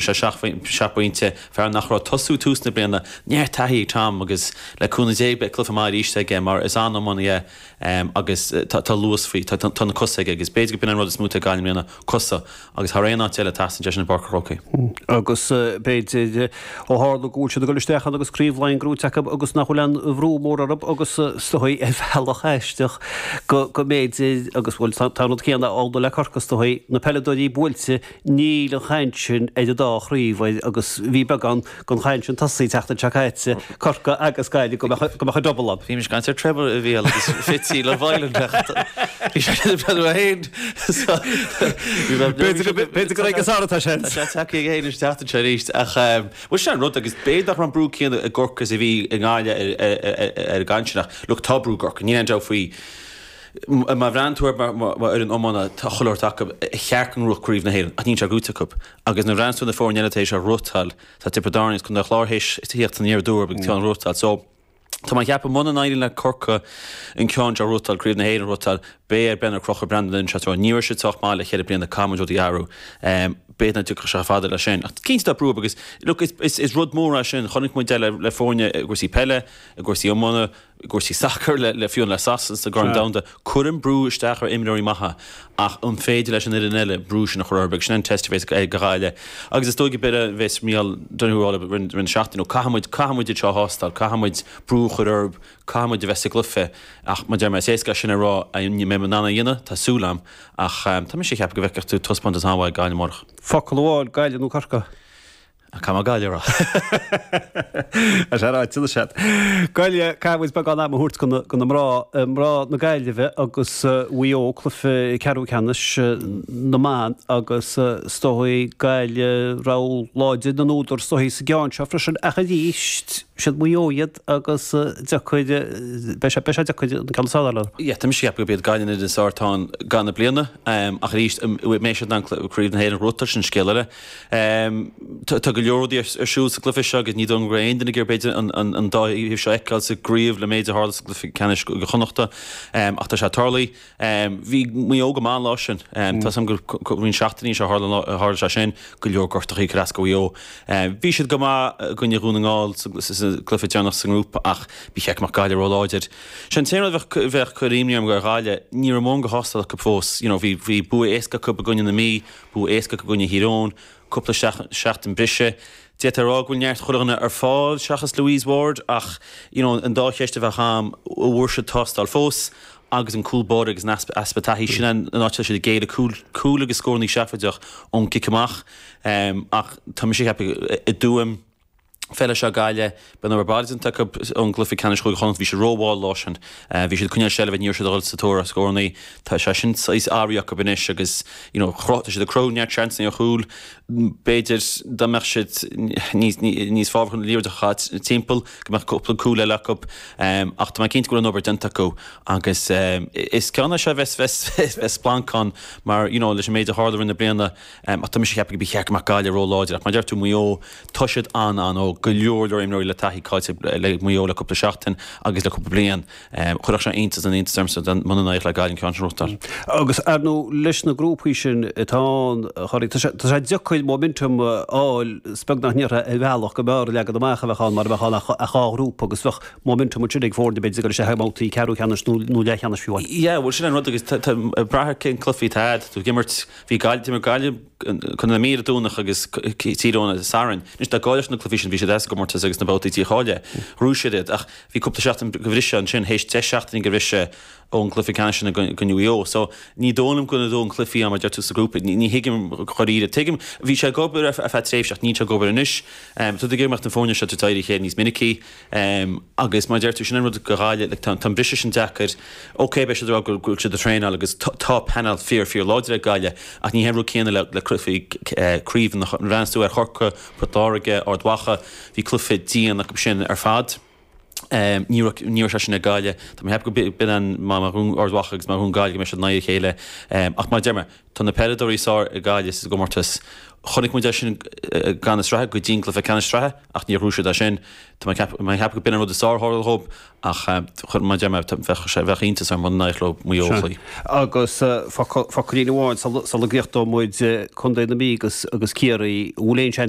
sé seacht bpointe, fear nach raibh ag tosú tús na bliana. Neart taithí ag Tom agus le cúnamh Dé beidh cluiche maith arís aige mar is an-iománaí é agus tá luas faoi, tá na cosa aige agus b'fhéidir gurb in an rud is mó atá ag Gaillimh i mbliana, cosa agus thar aon áit eile tá teastaíonn cosa i bPáirc an Chrócaigh. Agus b'fhéidir ó tharla go bhfuil siad ag dul isteach ann agus Craobh Laighean gnóite acu agus nach bhfuil aon bhrú mór orthu agus is dóigh ar bhealach aisteach go mb'fhéidir agus bhuel tá an rud céanna ag dul le Corcaigh, is dóigh na peileadóirí buailte Níl an chaint sin ar an dá chraobh agus bhí beagán den chaint sin tosaithe an tseachtain seo caite, Corcaigh agus Gaillimh go mbeadh an 'double' ann. Bhí muid ag caint ar 'treble' a bhí ann agus fitzy le bliain ach bhí sé sin ar a haon so b'fhéidir gur ag an Sár atá sé ins. Tá sé tagtha ag a haon an tseachtain seo arís ach bhuel sin an rud agus b'fhéidir nach raibh an brú céanna i gCorcaigh is a bhí i nGaillimh ar an gcaint sin ach look tá brú i gCorcaigh níl aon dabht faoi. Má bhreathnaíonn tú ar fhoireann iomána, tá a thuilleadh oird acu, cheart go mbuafadh Craobh na hÉireann ach níl sé buaite acu. Agus nuair a bhreathnaíonn tú ar na foirne eile tar éis a bhuachtáil, tá Tiobraid Árann agus Contae an Chláir tar éis theacht aniar aduaidh agus é a bhuachtáil. So, tá mé ag ceapadh muna n-éiríonn le Corcaigh an ceann seo a bhuachtáil, Craobh na hÉireann a bhuachtáil, beidh ar Ben a chrochadh Brandon Lynch as aréir. Ní raibh siad sách maith le cheithre bliana, Cathal Joe Dee Arú. B'fhéidir nach dtiocfadh sé chomh fada le sin. Ach cinnte tá brú orthu agus, look, is rud mór é sin. Chonaic muid é le foirne i gcúrsaí peile, i gcúrsaí iomána. i gcúrsaí sacair le foirne, le Sasana sa gCorn Domhanda, cuireann brú isteach ar imreoirí maithe ach an féidir leis an fhoireann eile brú sin a chur orthu? Agus sin an teist a bheas ag Gaillimh agus is dóigh a bheas Micheál Donoghue á lua le roinnt na seachtaine nó caithfidh muid, caithfidh muid iad seo a thástáil, caithfidh muid brú a chur orthu, caithfidh muid a bheith sa gcluiche ach mar a deir mé, is éasca é sin a rá, an mbeidh siad in ann é a dhéanamh, tá súil agam ach tá mise ag ceapadh go bhfeicfidh tú taispeántas an-mhaith ag Gaillimh amárach. Focal amháin, Gaillimh nó Corcaigh? a Caithfidh mé Gaillimh a rá. Tá sé ráite anois agat. Gaillimh, caithfidh muid beagán ama a thabhairt do na mná, mná na Gaillimhe agus Mhaigh Eo, cluiche ceathrú ceannais na mban agus is dóigh Gaillimh rogha láidir na n-údar, is dóichí, sa gceann seo freisin ach arís is iad Maigh Eo iad agus deacair, beidh sé, beidh sé deacair an ceann is fearr a Tá mise ag ceapadh gurb iad Gaillimh an fhoireann is fearr dtaobh seo den bhliain ach arís an mbeidh siad in ann Craobh na hÉireann a bhuachan, sin scéal eile. Tá go leor rudaí ar siúl sa gcluiche seo agus ní dóigh go raibh aon duine ag iarraidh b'fhéidir an dá thaobh seo a fheiceáil sa gcraobh le méid a tharla sa gcluiche ceannais Cúige Chonnachta ach tá sé ag tarlú. Bhí Maigh Eo go maith an lá sin. Tá fhios againn gur roinnt seachtainí seo tharla an lá tharla sé sin go leor gortachaí ag cur as do Mhaigh Eo. Bhí siad go maith i gcoinne Dhún na nGall sa gcluiche deireanach sa ngrúpa ach bí sheic amach Gaillimh ró láidir. Sin an t-aon rud bheadh bheadh ag cur imní orm go raibh Gaillimh ní raibh mórán de thástáil acu fós you know bhí bhí bua éasca acu i gcoinne na Mí, Bua éasca i gcoinne Thír Eoghain cúpla seachtain briseadh. D'fhéadfá a rá go bhfuil neart chuile dhuine ar fáil seachas Louise Ward ach, you know, an dá cheist a bheadh a'am, an bhfuair siad tástáil fós agus an cúl báire agus an easpa taithí, sin an áit a raibh siad ag géilleadh, cúl agus scórannaí seafóideach ón gcic amach ach tá mise ag ceapadh i dTuaim, Feilfidh sé Gaillimh, beidh an obair bhaile déanta acu ón gcluife ceannais Chúige Chonnacht. Bhí siad ró-mhall an lá sin. Bhí siad ag coinneáil seilbhe, ní raibh siad ag dhul sa tóir ar scórannaí. Tá sé sin saghas athraithe acu anois agus you know chruth, tá siad ag cruthú neart seansanna ar chúil. B'fhéidir dá mbeadh siad níos, níos fábhartha an liathróid a chaitheamh timpeall go mbeadh cúpla cúl eile acu ach tá mé cinnte go bhfuil an obair déanta acu agus is ceann é seo a bheas, bheas, bheas splanc ann mar you know leis an méid a tharla i rith na bliana. Tá mise ag ceapadh go mba cheart go mbeadh Gaillimh ró láidir ach mar deir tú Maigh Eo tá siad an-, an-óg, go leor leor imreoirí le taithí caillte le Maigh Eo le cúpla seachtain agus le cúpla bliain. Chuirfeadh sé iontas na n-iontas orm muna n-éireodh le Gaillimh an ceann sin a bhuachan. Agus ar ndóigh leis na grúpaí sin atá ann a Thoraí, tá sé, tá sé deacair momentum a fháil 's beag nach ndéarfá ar bhealach go mb'fhearr leagan amach a bheadh ann mara mbeadh ann ach dhá ghrúpa agus bheadh momentum ansin ag foirne b'fhéidir ag dul isteach i mbabhtaí ceathrú ceannais nó leathcheannais fiú amháin. Yeah, bhuel sin an rud agus tá, tá, ag brath ar cén cluiche atá agat, tú ag imirt. Bhí Gaillimh, d'imir Gaillimh i gcoinne na Mí ar an Domhnach agus Tír Eoghain ar an Satharn. Anois dá gcaillfeadh siad na cluichí sin, bhí siad as an gcomórtas agus sna babhtaí dícháilithe, bhrú siad iad ach bhí cúpla seachtain go bhriseadh ansin, théis deich seachtainí go bhriseadh ón gcluiche ceannais sin i gcoinne Mhaigh Eo. So ní dóigh liom go dódh an cluichí mar a deir tú sa ghrúpa, ní thuigim dháiríre. Tuigim, bhí sé ag obair ar feadh tréimhse ach níl sé ag obair anois. Tá tú ag iarraidh go mbeadh na foirne seo in aghaidh a chéile níos minicí. Em, agus mar a deir tú, sin an rud do Ghaillimh, like, tá, tá an briseadh sin deacair, okay, beidh siad ag rá go bhfuil, go bhfuil siad ag traenáil agus tá, tá panel fíor, fíor láidir ag Gaillimh ach ní hé an rud céanna le, le cluichí, eh, craoibhe nuair a bhreathnaíos tú ar Chorcaigh, Port Láirge, Ard Mhacha, bhí cluiche dian acu sin ar fad. Em, ní raibh, ní raibh sé sin ag Gaillimh. Tá mé ag ceapadh go, b'in an, má, má bhuann Ard Mhacha agus má bhuann Gaillimh go mbeidh siad in aghaidh a chéile. Em, ach mar a deir mé, Tá na peileadóirí is fearr ag Gaillimh sa gcomórtas. Chonaic muid é sin i gcaitheamh na sraithe, go dtí an cluiche ceannais sraithe, ach níor chruthaigh siad é sin. Tá mé ag ceapadh go b'in an rud is fearr a tharla dhób ach mar a deir mé bheadh iontas orm muna n-éireodh leo Maigh Eo a chloí. Agus focailín amháin sula gcríochnóidh muid contae na Mí agus Ciarraí, an bhfuil aon seans